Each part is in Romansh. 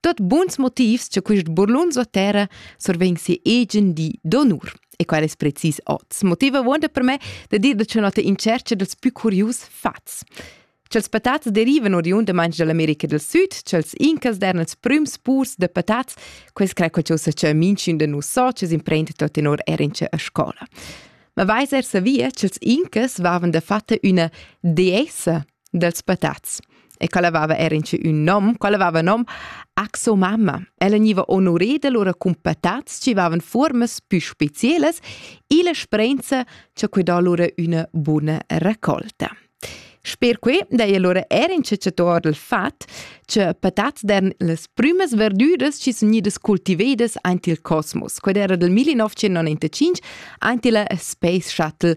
Tot buns motivs cha quist burlun suo terra survegn sia egen di d'onur. E quel es precis hoz. Motiv avuonda per me da dir da cenota in cercha dals più curius fats. Ch'els patats derivan oriundamaing da l'America del Sud, ch'els incas dern els prüms purs da patats, quels crai quel cha cha minchün da nus so, ch'es imprend tot in or er in a scola. Ma vais er savia ch'els incas vavan da fatta üna deessa dels patats e quella aveva era in un nom, quella aveva nom Axomama. Ella gniva onoreda lura cun patats chi vavan formas pü specielas e la sprenza cha que dà lura üna buna raccolta. Sper que daja lura er in cecciator del fat, che patats dern las prümas verdüras chi sun gnidas cultivedas aint il cosmos. Qued era del 1995 aint illa Space Shuttle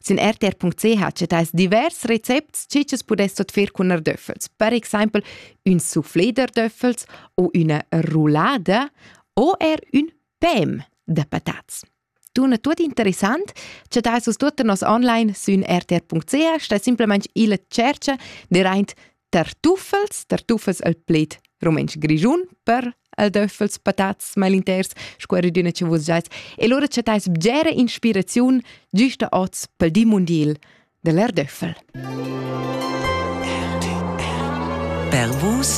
Sin rtr.ch chattais divers recepts che tschs pudess tot fer cun erdöffels. Per exempel ün soufflé d'erdöffels o üna roulada o er ün pem da patats. Tuna tut interessant, che dais us tuotta nos online sün rtr.ch, stai simplemente illa tschercha deraint tartuffels, tartuffels al pled rumantsch grischun per al döffels patats mal inters sco era d'üna cha vus giais e lura chattais bgera inspiraziun güsta oz pel di mundiel da l'Erdöffel. Per vus